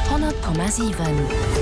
100,7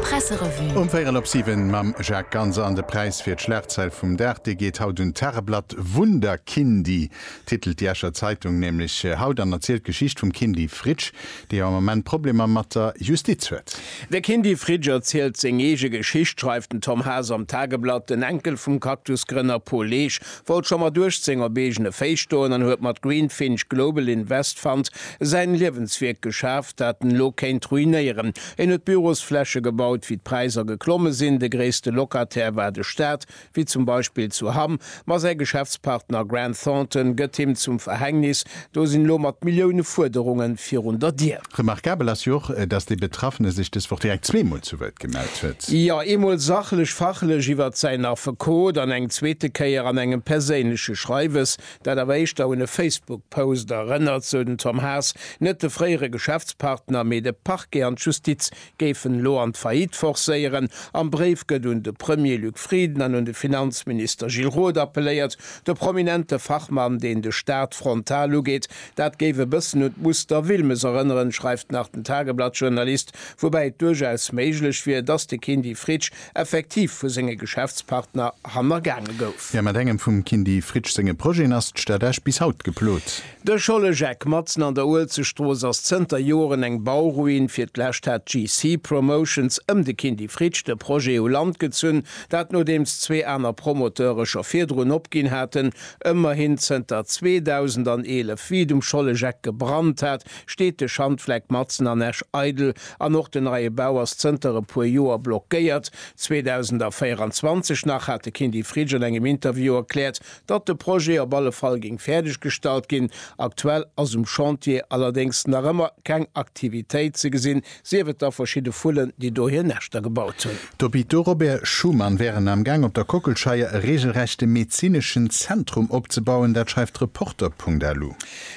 Presserevue. Um véierel op siwen mam Jacques Ganser. An de Präis fir d'Schlagzeil vum Dag, dee geet haut un d'Tageblatt Wunderkindy, titelt déi Escher Zeitung nämlech haut an erzielt d'Geschicht vum Kindy Fritsch, dee jo am Ament Problemer mat der Justiz huet. De Kindy Fritsch erzielt seng eege Geschicht, schreift den Tom Haas am Tageblatt. Den Enkel vum Cactus-Grënner Paul Leesch Wollt scho mat 18 op eegene Féiss stoen an huet mat Greenfinch Global Invest Fund säin Liewenswierk geschaaft, dat en elo kéint ruinéieren. En huet Bürosfläche gebaut, wéi d'Präiser geklomme sinn. De gréisste Locataire war de Staat, wéi zum Beispill zu Hamm, ma säi Geschäftspartner Grant Thornton gëtt him zum Verhängnis. Do sinn elo mat Millioune Fuerderungen virun der Dier. Remarkabel ass jo och, dass dee Betraffene sech dës Woch direkt zweemol zu Wuert gemellt huet. Jo, eemol sachlech, fachlech iwwert säin Affekot an eng zweete Kéier an engem perséinleche Schreiwes, dat awer éischter un e Facebook-Post erënnert, sou den Tom Haas, net de fréiere Geschäftspartner, mee de Parquet an d'Justiz géifen elo an d'Faillite forcéieren. Am Bréif gëtt un de Premier Luc Frieden an un de Finanzminister Gilles Roth appelléiert, de prominente Fachmann, deen de Staat frontal ugeet. Dat géif e bëssen un d'Muster Wilmes erënneren, schreift nach den Tageblatt-Journalist, woubäi et duerchaus méiglech wier, datt de Kindy Fritsch effektiv vu senge Geschäftspartner hannergaange gouf. Mä mat engem vum Kindy Fritsch senge Projeten ass d'Stad Esch bis haut geplot. De Schollegeck matzen an der Uelzechtstrooss ass zënter Joren eng Bauruin. Fir d'lescht hat GC Promotions ëm de Kindy Fritsch de Projet u Land gezunn, dat nodeems zwee aner Promoteure scho virdrun opginn haten. Ëmmerhin zënter 2011, wéi et um Schollegeck gebrannt hat, steet de Schandfleck matzen an Esch eidel an och den neie Bau ass zënter e puer Joer blockéiert. 2024 nach hat de Kindy Fritsch an engem Interview erkläert, datt de Projet op alle Fall géing fäerdeg gestallt ginn. Aktuell ass um Chantier allerdéngs nach ëmmer keng Aktivitéit ze gesinn, sief et da verschidde Vullen, déi do hir Näschter gebaut hunn. D'Hôpitaux Robert Schuman wären am Gaang op der Kockelscheier e reegelrechte medezineschen Zentrum opzebauen, dat schreift de Reporter.lu.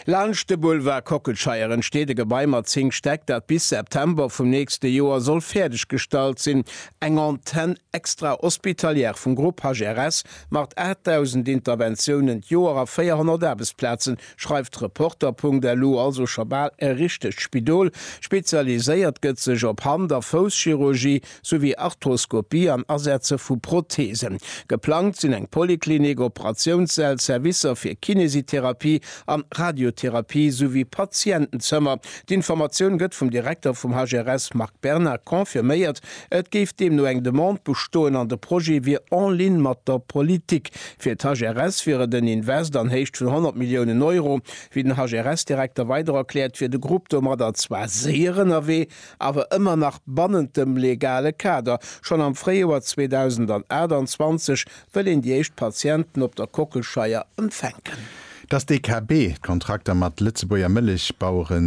Laanscht de Boulevard Kockelscheier entsteet e Gebai mat 10 Stäck, dat bis September vum nächste Joer soll fäerdeg gestallt sinn. Eng Antenn Extra-hospitalière vum Grupp HRS macht 8.000 Interventiounen d'Joer a 400 Aarbechtsplazen, schreift Reporter.lu. Also scho bal e richtegt Spidol. Spezialiséiert gëtt sech op Hand a Fousschirurgie souwéi Arthroskopie an Asetze vu Protheesen. Geplangt sinn eng Poliklinik, Operatiounssäll, Servicer fir Kinesitherapie an Radiotherapie souwéi Patientenzëmmer. D'Informatioun gëtt vum Direkter vum HRS Marc Berna confirméiert. Et géif deemno eng Demande bestoen an de Projet wier en ligne mat der Politik. Fir d'HRS wier et en Invest an Héicht vun 100 Milliounen Euro. Wéi den HRS-Direkter weider erkläert, wier de Grupp domadder zwar séier ënnerwee, awer ëmmer nach bannent dem legale Kader. Schonn am Fréijoer 2028 wëll een déi éischt Patienten op der Kockelscheier empfänken. Dass d'DKB d'Kontrakter mat Lëtzebuerger Mëllechbauere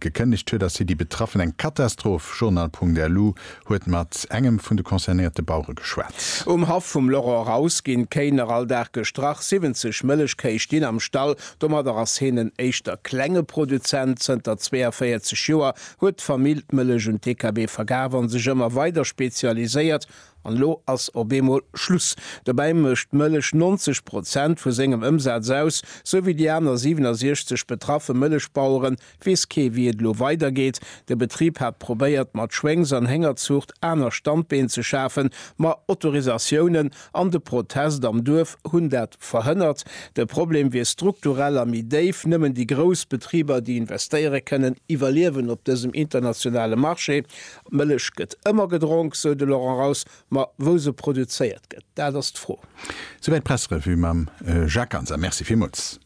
gekënnegt huet, ass fir déi Betraffen eng Katastroph. Journal.lu huet mat engem vun de concernéierte Bauere geschwat. Um Haff vum Laurent Raus ginn d'Kéiner all Dag gestrach. 70 Mëllechkéi stinn am Stall. Domadder ass heen en éischter klenge Produzent. Zënter 42 Joer huet d'Famill d'Mëllech un d'DKB verkaaft a sech ëmmer weider spezialiséiert. An elo ass op eemol Schluss. Dobäi mécht d'Mëllech 90 Prozent vu sengem Ëmsaz aus. Sou wéi déi aner 67 betraffe Mëllechbaueren, weess kee wéi et elo weidergeet. De Betrib hat probéiert mat Schwéngs an Héngerzuucht aner Standbeen ze schafen, ma Autorisatiounen an de Protest am Duerf hunn dat verhënnert. De Problem wier strukturell a méi déif. Nëmmen déi grouss Betriber, déi investéiere kënnen, iwwerliewen op dësem internationale Marché. D'Mëllech gëtt ëmmer gedronk, sou de Laurent Raus. Ma wou se produzéiert gëtt, dat ass d'Fro. Souwäit d'Pressrevue mam Jacques Ganser. Merci villmools.